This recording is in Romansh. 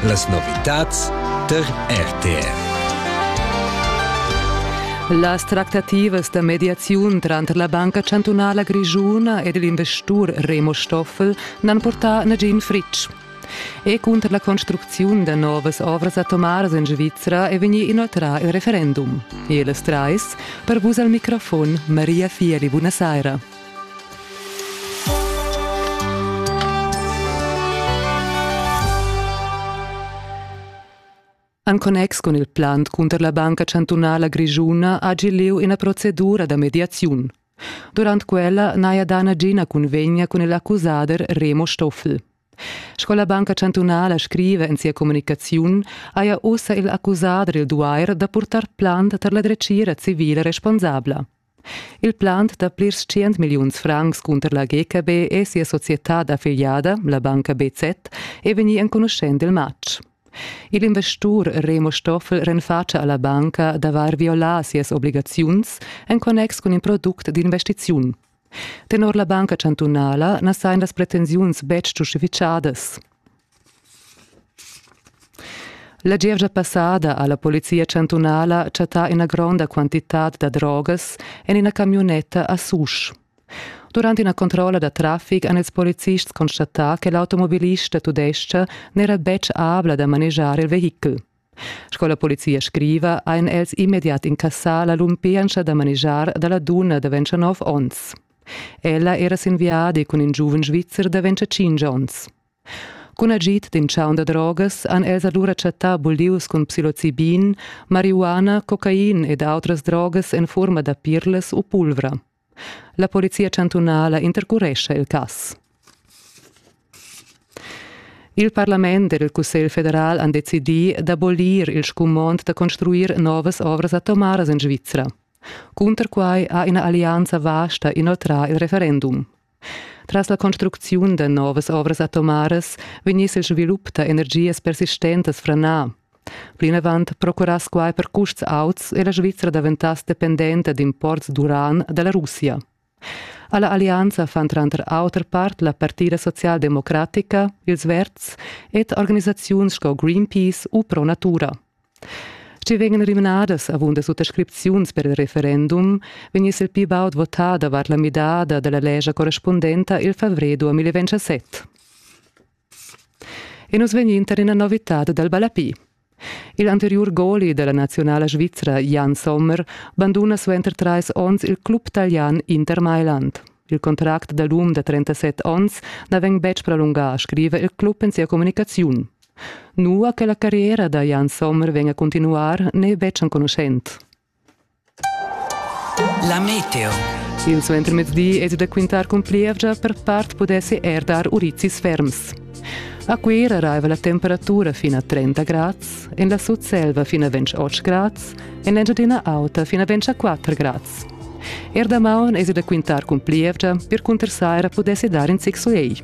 Las novitads tar RTR. Las tractativas da mediaziun tranter la Banca chantunala grischuna ed l'investur Remo Stoffel n'han purtà nagin fritg. E cunter la construcziun da novas ovras atomaras en Svizra è vegnì inoltrà il referendum. E las trais per vus al microfon Maria Fieli, buona saira. En connex cun il plan cunter la Banca chantunala grischuna hagi lieu ina procedura da mediaziun. Durant quella n'haja dà nagina cunvegna cun l'accusader Remo Stoffel. Sco la Banca chantunala scriva en sia communicaziun, haja ussa il accusader il duair da purtar plant tar la dretgira civila responsabla. Il plan da plirs tschient milliuns francs cunter la GKB e sia societad affiliada, la banca BZ, è vegnì enconuschent il matg. Il investur Remo Stoffel renfatscha alla banca d'avair violà sias obligaziuns en connex cun in product d'investiziun. Tenor la banca chantunala na sajan las pretensiuns betg giustificadas. La gievgia passada ha la polizia chantunala chattà ina gronda quantitad da drogas en ina camiunetta a Susch. Durant ina controlla da traffic han ils policists constatà che l'automobilista tudestga n'era betg abla da manegiar il vehichel. Sco la polizia scriva, ein els immediat incassà la lumpientscha da manegiar dalla dunna da 29 onns. Ella era sin viadi cun in giuven svizzer da 25 onns. Cun agid d'in chaun da drogas han els alura chattà bulius cun psilocibin, marihuana, cocain ed autras drogas en furma da pirlas u pulvra. La polizia chantunala intercurescha il cass. Il parlament ed il Cussegl federal han decidì d'abolir il scumond da construir novas ovras atomaras en Svizra. Cunter quai ha ina allianza vasta inoltrà il referendum. Tras la construcziun da novas ovras atomaras vegniss il svilup da energias persistentas franà. Plinavant procurass quai per custs auts e la Svizra daventass dependenta d'imports d'uran da la Russia. Alla allianza fan tranter auter part la Partida socialdemocratica, ils Verds ed organisaziuns sco Greenpeace u Pro Natura. Sch'i vegnan rimnadas avunda suttascripziuns per il referendum, vegniss il pli baud votà davart la midada da la lescha correspundenta il favrer 2027. E nus vegnin tar ina novitad dal ballapi. Il anteriur goli della nazionala svizra Jan Sommer banduna suenter trais onns il club talian Inter Mailand. Il contract da l'um da 37 onns na vegn betg prolungà, scriva il club en sia communicaziun. Nua che la carriera da Jan Sommer vegn a continuar n'è betg enconuschent. La meteo. Il suentermezdi è da quintar cun plievgia per part pudessi er dar urizis ferms. A Cuira raiva la temperatura fin a 30 grads, en la Sutselva fin a 28 grads, en l'Engiadina Auta fin a 24 grads. Er damaun es da quintar cun plievgia, per cunter saira pudessi dar in zic suei.